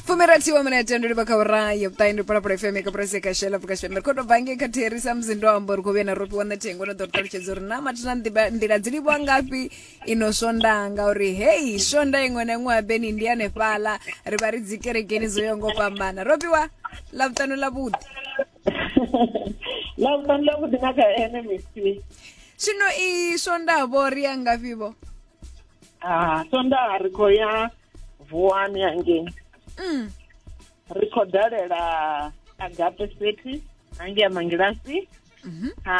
fumirathi wa minete ndo livha kha ura ya vhuṱayi ndi phalaphala fm ka purasi ka shela pfuka shembe khoto bange kha therisa musi ndo amba uri kho vhuya na ropiwa na thengo na ḓo ri ṱalutshedza uri na mathina nḓiba- nḓila dzi livhiwa ngafhi ino swonda ngauri hei swonda iṅwe na iṅwe ya beni ndi hanefhala ri vha ri dzi kerekeni dzo yaho ngo fhambana ropiwa ḽa vhuṱanu ḽa vhuḓi la vhuṱanu ḽa vhuḓi na kha ene misi zwino i swonda vho ri ya ngafhi vho ah sondaha ri khou ya vuwani hangei mm. ri khou dalela agape city hangei mangilasi mm -hmm. ha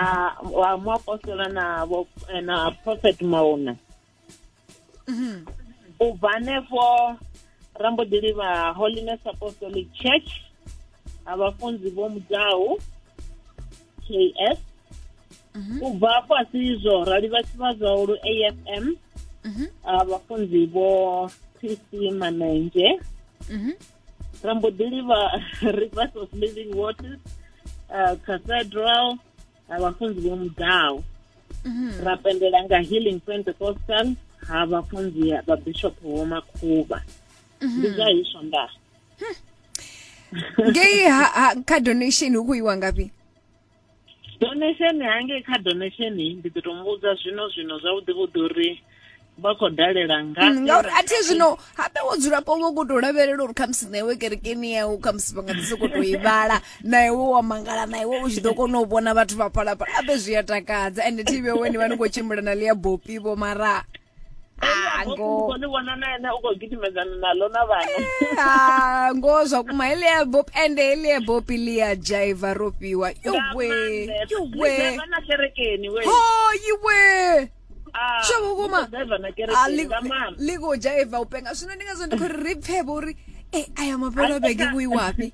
wa muapostola na eh, na prophet mauna mm -hmm. u bva hanefho ra mbo ḓi livha holiness apostolic church ha vhafunzi vho mudau ks mhm. u bva afho a si izwo ra livha tshivha zwahulu afm mhm. ah, vhafunzi vho tc manenzhe mhm. ra mbo ḓi livha rivers of living waters ah, cathedral ah, vhafunzi vho mudaho ra pendela nga healing pentecostal ha vhafunzi vha bishop vho makhuvha ndi zwa hiswo ndaa hmm. ngei ha, ha kha donation hu khou iwa ngafhi donation hangei kha donation ndi ḓo tou muvhudza zwino zwino zwavhuḓi vhuḓi uri vha khou dalela nga mm, ngauri a thi zwino habe wo dzulapo vho khou tou lavhelela uri khamusi na iwe kerekeni yau khamusi vha nga ḓi sokou tou i vhala na iwe wa mangala na iwe u tshi ḓo kona u vhona vhathu vha phalaphala habe zwi a takadza ende thi vhe weni vha ni khou tshimbila na ḽia bopi vho mara ngo ni vhona na ene u khou gidimedzana naḽo na vhana ah, ngo zwa kuma helia bob ende helia bob lia jaiva ro fhiwa yowe yowe na kerekeni we ho yiwe ah, sho vhukuma ḽi khou jaiva u penga zwino ndi ngazwo ndi khou ri ri pfhe vho uri e aya mafhelo bege vhuiwapi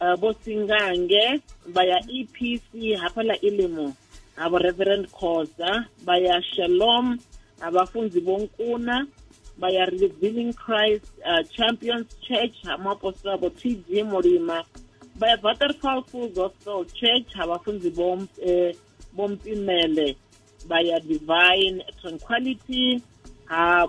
uh, vho singange vha ya epc hafha ḽa ilimo ha vho reverend khoza vha ya shalom ha vhafunzi vho nkuna vha ya revealing christ uh, champions church ha muapostola vho tg mulima vha ya butterfall full gospel church ha vhafunzi vho eh, vho mpimele vha ya divine tranquility ha